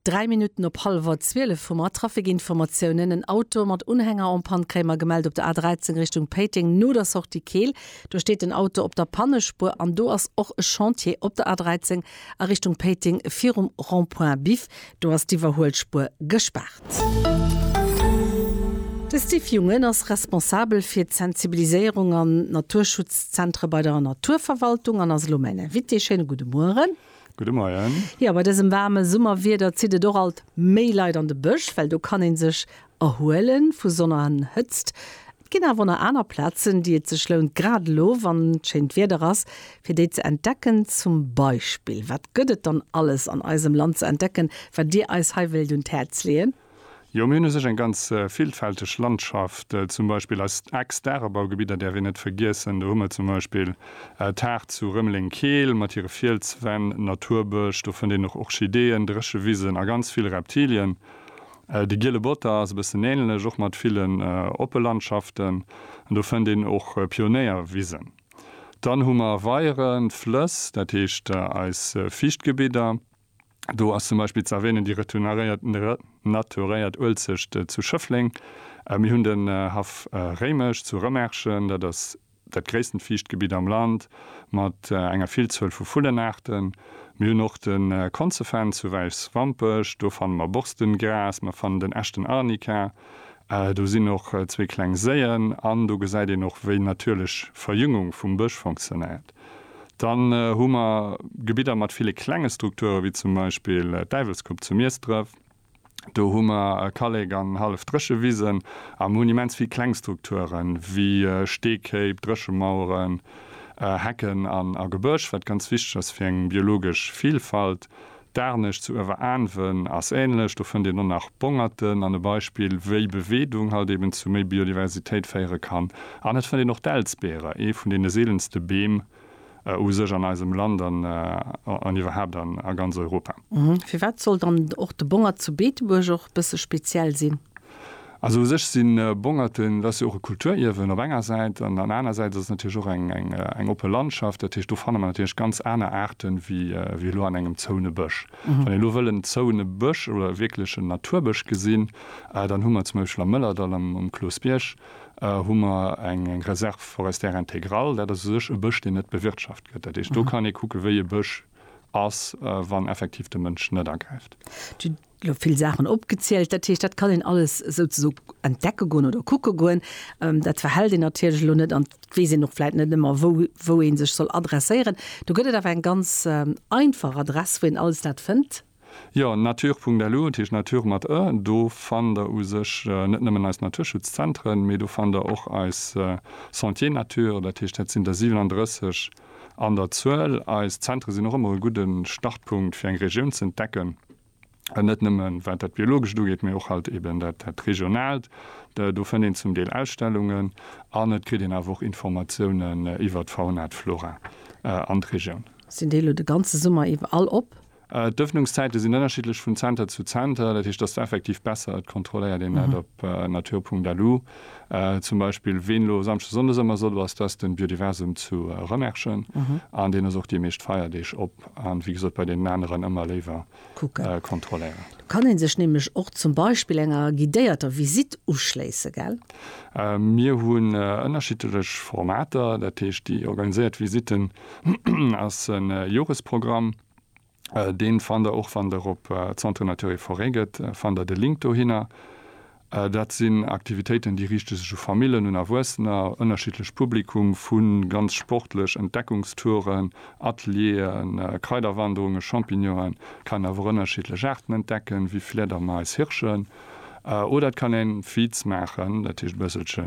Dräi Minutten op hallwer 12 hu mer Trafikinformatiounen. En Auto mat Unhänger en panne kréie mer gemellt op der A13 Richtung Péiteng no der Sortie Keel. Do steet den Auto op der Pannespuer an do ass och e Chantier op der A13 a Richtung Péiteng virum Rond-point Biff. Do ass d'Iwwerhuelspuer gespaart. De Steve Jungen ass responsabel fir d'Sensibiliséierung an d'Naturschutzzentre bei der Naturverwaltung an ass elo mäin Invité. Schéine gudde Mueren. Gudde Moien. Jo, bei dësem waarme Summerwieder zitt et och alt méi Leit an de Bësch, well do kann ee sech erhuele vu Sonn an Hëtzt. Et ginn awer nach aner Plazen, déi et sech lount, grad elo, wann schéint Wieder ass, fir déi ze entdecken. Zum Beispill, wat gëtt et dann alles an eisem Land ze entdecken, wat Dir eis hei wéilt un d'Häerz leeën? Jo, mir hunn u sech eng ganz villfälteg Landschaft, zum Beispill eist Ex-Dagebaugebidder däerf een net vergiessen. Do hu mer zum Beispill d'Haardt zu Rëmeleng-Keel mat hire Fielswänn, Naturbësch, do fënnt een och Orchideeën, Dréchewisen a ganz vill Reptilien. De Giele Botter ass e bëssen änlech, och mat villen oppe Landschaften, an do fënnt een och Pionéierwisen. Dann hu mer Weieren, Flëss, dat heescht eis Fiichtgebidder. Do ass zum Beispill ze erwänen déi renaturéiert Uelzecht zu Schëffleng. Mir hunn den Haff Réimech zu Rëmerschen, dat ass dat gréissten Fiichtgebitt am Land mat enger Villzuel vu Vullenaarten. Mir hunn och de Konzefenn zu Wäiswampech, do fanne mer Borstengras, mer fannen den Echten Arnika, do sinn och zwee kleng Séien an do gesäit een och, wéi natierlech Verjüngung vum Bësch funktionéiert. Dann hu mer Gebidder mat ville klenge Strukture wéi zum Beispill d'Däiwelsgrupp zu Miesdref. Do hu mer Kallek an hallef dréche Wisen a mer hunn immens vill kleng Strukture wéi Steekéip, Dréchemaueren, Hecken a Gebësch, wat ganz wichteg ass fir eng biologesch Vilfalt. D'Aarnescht zu Ueweraaanwen ass ähnlech, do fënnt een och nach Bongerten an e Beispill wéi Beweedung halt eben zu méi Biodiversitéit féiere kann. An et fënnt een och d'Elsbeere, ee vun deene seelenste Beem u sech an eisem Land an iwwerhaapt a ganz Europa. Firwat soll dann och de Bongert zu Beetebuerg och bësse speziell sinn? Also u sech sinn Bongerten, dat ass jo och e Kulturierwen op enger Säit an an aner Säit ass et natierlech och eng eng oppe Landschaft. Dat heescht do fanne mer natierlech ganz aner Aarte wéi wéi elo an engem zoune Bësch. Wann ee elo wëll en zoune Bësch oder e wierklechen Naturbësch gesinn, dann hu mer zum Beispill am Mëllerdall am um Cloosbierg hu mer eng eng Réserve forestière intégrale. Dat ass u sech e Bësch, deen net bewirtschaft gëtt. Dat heescht do kann ee kucke wéi e Bësch ass, wann effektiv de Mënsch net agräift. Elo vill Saachen opgezielt, dat heescht, dat kann een alles souzeso entdecke goen oder kucke goen. Dat verhält een natierlech elo net an et weess een och vläit net ëmmer, wou wou ee sech soll adresséieren. Do gëtt et awer eng ganz einfach Adress, wou een alles dat fënnt. Jo, natur.lu, dat heescht natur mat ë. Do fannt der u sech net nëmmen eis Naturschutzzentren, mee do fannt der och eis Sentiers nature, dat heescht, dat sinn der 37 an der Zuel. Eis Zentre sinn och ëmmer e gudde Startpunkt, fir eng Regioun z'entdecken. net nëmme wat dat Biologescht ugeet, mee och halt eben dat Regionaalt. Do fënnt een zum Deel Ausstellungen an et kritt een awer och Informatiounen iwwert d'Fauna, d'Flora an d'Regioun. Sinn déi elo de ganze Summer iwwer all op? D'Ëffnungszäite sinn ënnerschiddlech vun Zenter zu Zenter. Dat heescht, dass du effektiv besser et kontrolléiert een dat op natur.lu zum Beispill. Ween elo Samschdes, Sonndes ëmmer sot, ass, dass de Biodiversum zu Rëmerschen an deen ass och déi meescht Feierdeeg op. an wéi gesot bei deenen aneren ëmmer léiwer kontrolléieren. Do kann ee sech nämlech och zum Beispill enger guidéierter Visitt uschléisse, gell? Mir hunn ënnerschiddlech Formater, dat heescht déi organiséiert Visitten ass e Joresprogramm, dee fannt der och wann der op Centre Nature et Forêt gëtt, fannt der de Link dohinner. Dat sinn Aktivitéiten, déi riichte sech u Famillen, un Erwuessener, ënnerschiddlech Publikum, vu ganz sportlech Entdeckungstouren, Atelieren, Kraiderwanderungen, Champignonen, et kann een awer och ënnerschiddlech Aarten entdecken, wéi Fliedermais, Hirschen, oder et kann een Feeds maachen, dat heescht e bësselche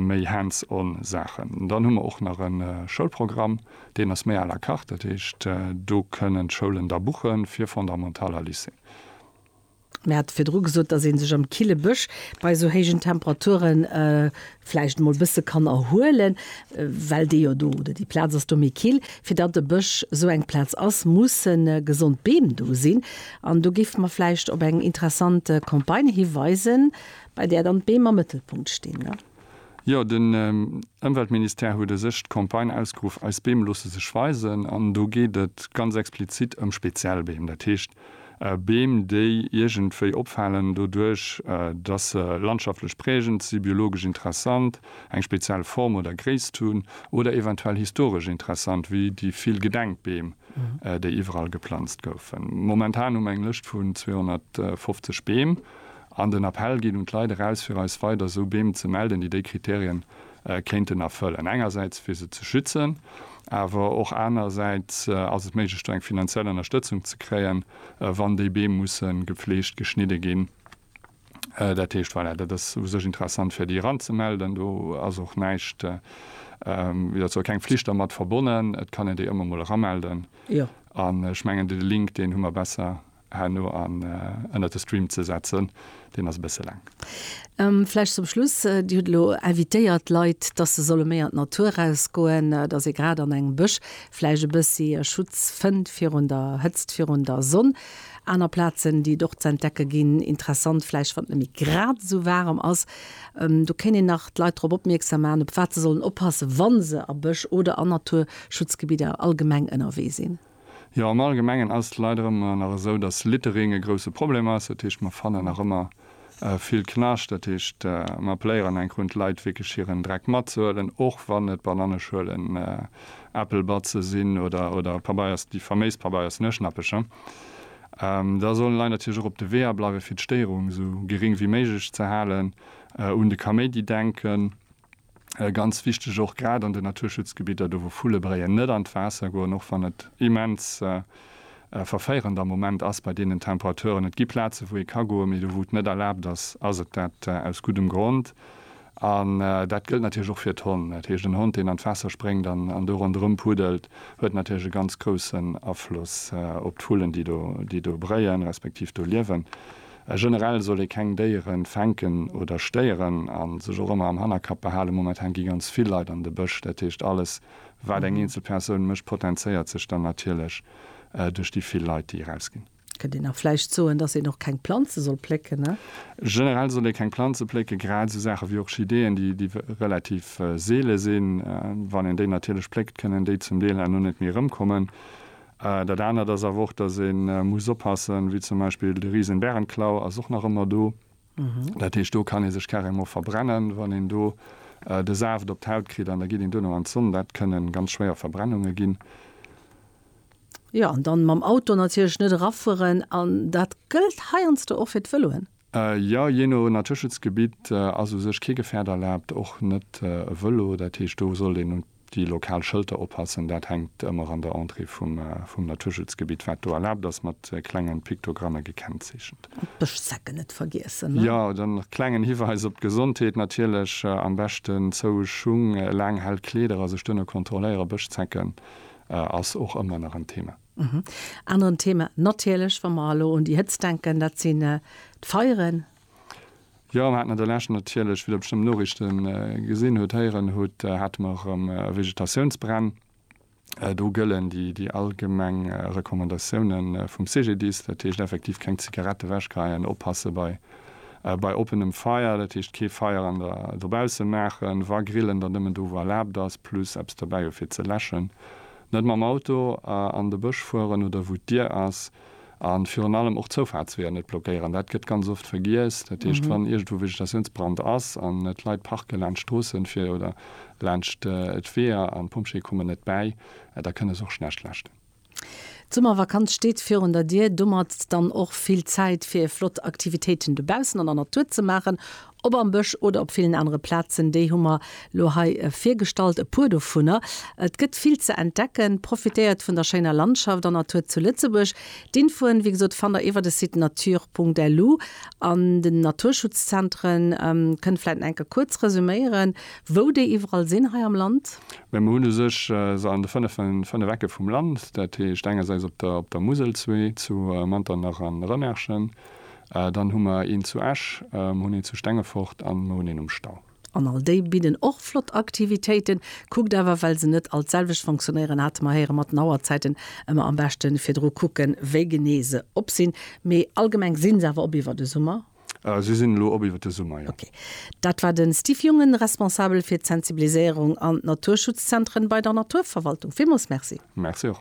méi hands-on Saachen. Dann hu mer och nach e Schoulprogramm, deen ass méi à la carte, dat heescht do kënnen d'Schoulen da buchen, fir Fondamental a Lycée. Mir hate virdru gesot, dass ee sech am kille Bësch bei esou héijen Temperature vläicht emol e bësse kann erhuelen, well dee jo do oder déi Plaz ass do méi kill. Fir datt e Bësch esou eng Plaz ass, musse gesond Beem do sinn. An do géife mer vläicht op eng interessant Campagne hiweisen, bei där dann d'Beem am Mëttelpunkt stinn. Jo, den Ëmweltministère huet u sech d'Campagne ausgeruff Eis Beem loosse sech weisen. An do geet et ganz explizit ëm speziell Beem. Dat heescht Beem, déi iergendwéi opfalen doduerch, datt se landschaftlech prägend si, biologesch interessant, eng speziell Form oder Gréisst hunn oder eventuell historesch interessant, wéi déi vill Gedenkbeem, déi iwwerall geplanzt goufen. Momentan hu mer eng Lëscht vun 250 Beem An den Appell geet un d'Leit eraus, fir eis weider esou Beem ze melden, déi déi Kriterien kéinten erfëllen. Engersäits fir se ze schützen, awer och anerersäits ass et méiglech do eng finanziell Ënnerstëtzung ze kréien, wann déi Beem musse gefleegt, geschnidde ginn. Dat heescht, voilà, dat ass u sech interessant fir déi eranzemelden. Do ass och näischt, wéi dat soll, keng Flicht dermat verbonnen. Et kann een déi ëmmer emol eramelden. Jo. An ech mengen, de Link, deen hu mer besser. Herno an ënnert de Stream ze setzen. Deen ass e bësse laang. Vläicht zum Schluss, Dir hutt elo invitéiert d'Leit, dass se solle méi an d'Natur erausgoen, dass ee grad an engem Bësch vläicht e bëssi Schutz fënnt virun der Hëtzt, virun der Sonn. Aner Plazen, déi et och z'entdecke ginn, interessant vläicht, wann et nëmme grad esou waarem ass. Do kéint een nach d'Leit drop opmierksam maachen, op wat se sollen oppassen, wa se a Bësch oder a Naturschutzgebidder allgemeng ënnerwee sinn. Jo, am Allgemengen ass et leider ëmmer nach esou, dass Littering e grouse Problem ass. Dat heescht, mer fannen nach ëmmer vill Knascht. Dat heescht, mer appelléieren eng Kéier un d'Leit, wierklech hiren Dreck matzehuelen, och wann et Bananneschuelen, Äppelbatze sinn oder Pabeiers, déi faméis Pabeiers Nueschnäppelcher. Da sollen d'Leit natierlech och op de Weeër bleiwen, fir d'Stéierung esou geréng wéi méiglech ze halen, un de Kaméidi denken. Ganz wichteg och grad an den Naturschutzgebidder, do wou Vulle bréien, net an d'Waasser goen, och wann et immens verféierend am Moment ass bei deenen Temperaturen. Et gi Plaze wou ee ka goen, mee do wou et net erlaabt ass, ass et dat aus guddem Grond. An dat gëllt natierlech och fir d'Honn. Dat heescht en Hond deen an d'Waasser spréngt an do ronderëm puddelt, huet natierlech e ganz groussen Afloss op d'Vullen déi do bréien, respektiv do liewen. A generell soll ee keng Déiere fänken oder stéieren a sech och ëmmer am Hannerkapp behalen, momentan gi ganz vill Leit an de Bësch. Dat heescht, alles, wat eng eenzel Persoun mécht, potenzéiert sech dann natierlech duerch déi vill Leit, déi erausginn. Kënnt een da vläicht soen, dass een och keng Planze soll plécken? Generell soll ee keng Planze plécken, grad esou Saache wéi Orchideeën, déi relativ seele sinn. Wann een déi natierlech pléckt, kënnen déi zum Deel herno net méi erëmkommen. Dat anert ass awer och, dass ee muss oppassen, wéi zum Beispill de Risenbärenklau ass och nach ëmmer do. Dat heescht, do kann ee sech carrément verbrennen, wann een do de Saaft op d'Haut kritt an da geet een duerno an d'Sonn. Dat kënne ganz schwéier Verbrennunge ginn. Jo, an dann mam Auto natierlech net erafueren. An dat gëllt heiansdo och fir d'Vëloen. Jo, jee no Naturschutzgebitt ass u sech kee Gefährt erlaabt, och net e Vëlo. Dat heescht, do sollt een un déi lokal Schëlter oppassen. Dat hänkt ëmmer an der Entrée vum Naturschutzgebitt, wat do erlaabt ass, mat klengen Piktogramme gekennzeechent. An d'Bëschzecken net vergiessen, ne? Jo, dann nach klengen Hiweis op d'Gesondheet natierlech, am beschten zoue Schung, laang hell Kleeder a sech duerno kontrolléieren. Bëschzecken ass och ëmmer nach en Thema. Aneren Thema natierlech, wa mer elo un déi Hëtzt denken, dat sinn d'Feieren. Jo, mir haten an der Lescht natierlech, wéi Der bestëmmt Noriichte gesinn hutt, héieren hutt, hate mer erëm Vegetatiounsbränn. Do gëllen déi allgemeng Recommandatioune vum CGDIS, dat heescht effektiv keng Zigarette ewechgeheien, oppasse bei oppenem Feier, dat heescht kee Feier dobausse maachen, wa grillen, dann nëmmen do wou erlaabt ass, plus eppes dobäi hu fir ze läschen. Net mam Auto an de Bësch fueren oder wou d'Dier ass. A virun allem och Zoufaartsweeër net blockéieren. Dat gëtt ganz oft vergiess. Dat heescht, wann iergendwou Vegetatiounsbrand ass an et Leit parke laanscht d'Stroossen fir oder laanscht d'Weeër an d'Pompjeeë kommen net bäi, da kënne se och schlecht leschten. D'Summervakanz steet virun der Dier. Domat dann och vill Zäit fir flott Aktivitéiten dobaussen an der Natur ze maachen. Ob am Bësch oder op villen anere Plazen, déi hu mer lo hei virgestallt, e puer dovunner. Et gëtt vill ze entdecken, profitéiert vun der schéiner Landschaft an Natur zu Lëtzebuerg. D'Infoen, wéi gesot, fannt der iwwer de Site nature.lu. An den Naturschutzzentren, kënnt vläit nach eng Kéier kuerz resüméieren, wou déi iwwerall sinn hei am Land. Mä mer hunn u sech se an de fënnef Ecke vum Land, dat heescht engersäits op der Musel, zwee zu Manternach an Rëmerschen, Dann hu mer een zu Esch, mer hunn een zu Stengefort an mer hunn een um Stau. An all déi bidden och flott Aktivitéiten. Kuckt awer, well se net all d'selwecht fonctionnéieren, hate mer héieren, mat den Auerzäiten. Ëmmer am beschte virdru kucken, wéi genee se op sinn. Mee allgemeng si se awer op iwwer de Summer? Si sinn elo op iwwer de Summer, jo. Ok. Dat war de Steve Jungen, Responsabel fir d'Sensibiliséierung an d'Naturschutzzentren bei der Naturverwaltung. Villmools Merci. Merci och.